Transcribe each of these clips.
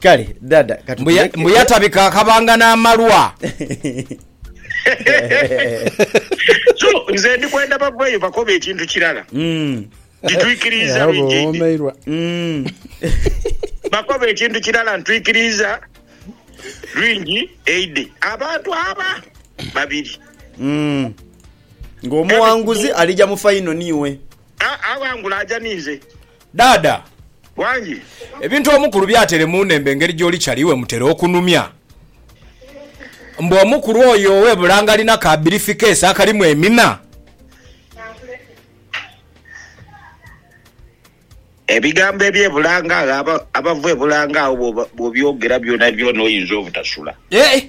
kale dada Mbu ya- katutuleke mbu yatabika akabanga n'amalwa. so nze ndi kwenda baveeyo bakobe ekintu kirala Mm, ntitwikiriiza Abo lwingi ndi bawoomeirwa. mm. bakoba ekintu kirala ntwikiriiza lwingi eide abantu aba babiri Mm. ng'omuwanguzi alija mu faino niiwe A- awangula aja ninze Dhaadha. Wangi. Ebintu omukulu by'atere mu nnembe engeri gy'oli chali we mutera okunumya. Mbu omukulu oyo ow'e Bulange alina ka birifikeesi akalimu emina. Ebigambo eby'e Bulange agho, abava e Bulange agho bw'obyogera byonabyona oyinza obutasula. Eeh!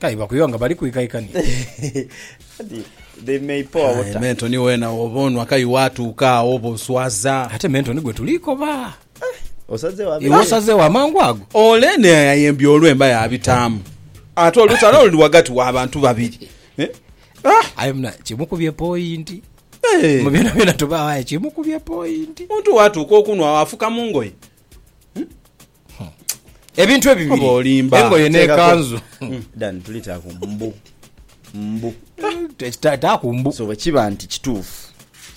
Kale bakuyowa nga bali kwikaikania. Kati they may pour Aye water. Mentoni wena woba onwa kayi watuuka agho oba oswaza. Ate Mentoni gwe tuli koba. Osazegho Iwe abere. osazegho amangu ago. Ole ne ayembye olwemba yabitaamu. Ate olutalo luli wagati wa bantu babiri. Eh? Ah! Aye muna kimukubye pointi. Eh! Mu byona byona tubagho aye kimukubye pointi. Omuntu watuuka okunwa agho afuka mungoye. ebintu ebibiri engoye nekanzu hmm. dan tulitako mbu mbu taku mbu so bwekiba nti kituufu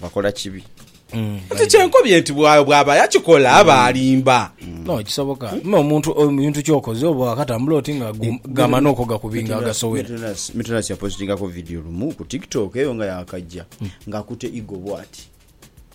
bakola kibi hmm. nti kyenkobye nti bwaba yakikola aba hmm. alimba no kisoboka me omuntu omuntu kyokoze oba wakatambula oti nga gama noko gakubinga agasowera mitunasi yapositingako vidiyo lumu ku tiktok eyo nga yakajja ngakute igo bwati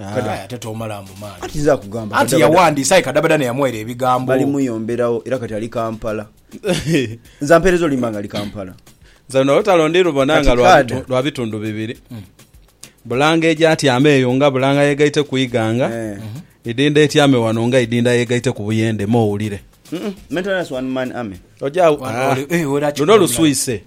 Ah. Kadaya ate tomalaamu maani. Kati nze akugamba Anti kadabada- yawandiisa aye kadabada neyamuwaira ebigambo. balimuyomberawo era kati ali kampala nze ampereza olimba nga ali kampala Nze luno olutalo ndi lubona Kati nga lwa kaada. bitu- lwa bitundu bibiri bulanga egyatyama eyo nga bulanga yegaite ku iganga Eh. idinda etyame wano nga idinda yegaite ku buyende mowulire Mm-mm. Mental Nurse one man army. Oja- Wano Ah. oli- eh, wera kikula luno mulala. luswise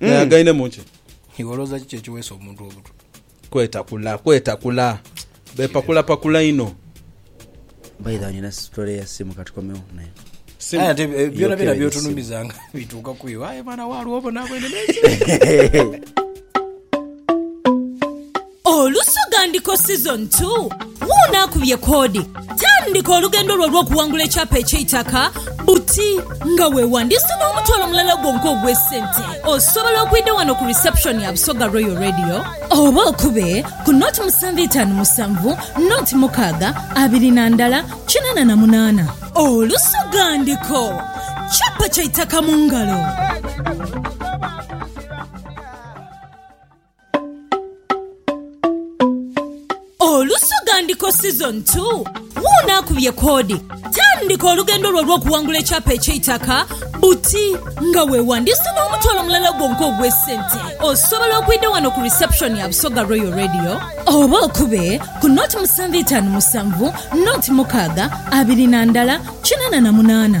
Hmm. Naye againemu ki? Iwe olowooza kiki ekiweesa omuntu obutwa? Kwetakula, kwetakula. Bepakulapakula inho. By the way nina story ya simu katukomewo nayo. Simu. Aye ate eh, byona byona Yokeera byotunumiza nga bituuka ku iwe aye mwana waalwo obona bwene naye Olusoga Ndiko Season 2, Wuuno akubye koodi! Tandika olugendo lwo olw'okuwangula ekyapa eky'eitaka buti nga weewandiisa n'omutwalo mulala gwonka ogw'esente. Osobola okwidha wano ku reception ya Busoga Royal Radio oba okube ku nought musanvu itaanu musanvu nought mukaaga abiri na ndala kinaana na munaana. Olusoga Ndiko, Kyapa kya itaka mu ngalo! Olusoga Ndiko Season 2 Wuuno akubye koodi! Tandika olugendo lwo olw'okuwangula ekyapa eky'eitaka buti nga weewandiisa n'omutwalo mulala gwonka ogw'esente. Osobola okwidha wano ku reception ya Busoga Royal Radio oba okube ku nought musanvu itaanu musanvu, nought mukaaga abiri na ndala kinaana na munaana.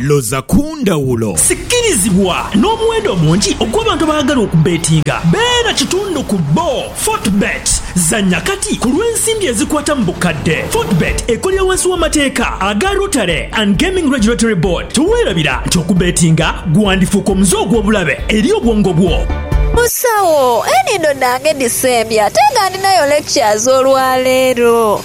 Loza ku ndhawulo. Sikirizibwa n'omuwendo omungi ogw'abantu abaagala okubbetinga. Beera kitundu ku bbo. Fortebet. Zannya kati ku lw'ensimbi ezikwata mu bukadde. Fortebet ekolera wansi w'amateeka aga Rotary and Gaming Regulatory Board. Teweerabira nti okubbetinga gwandifuuka omuze ogw'obulabe eri obwongo bwo. Musawo, enhindo dhange dhisembye ate nga ndhinayo lectures olwaleero.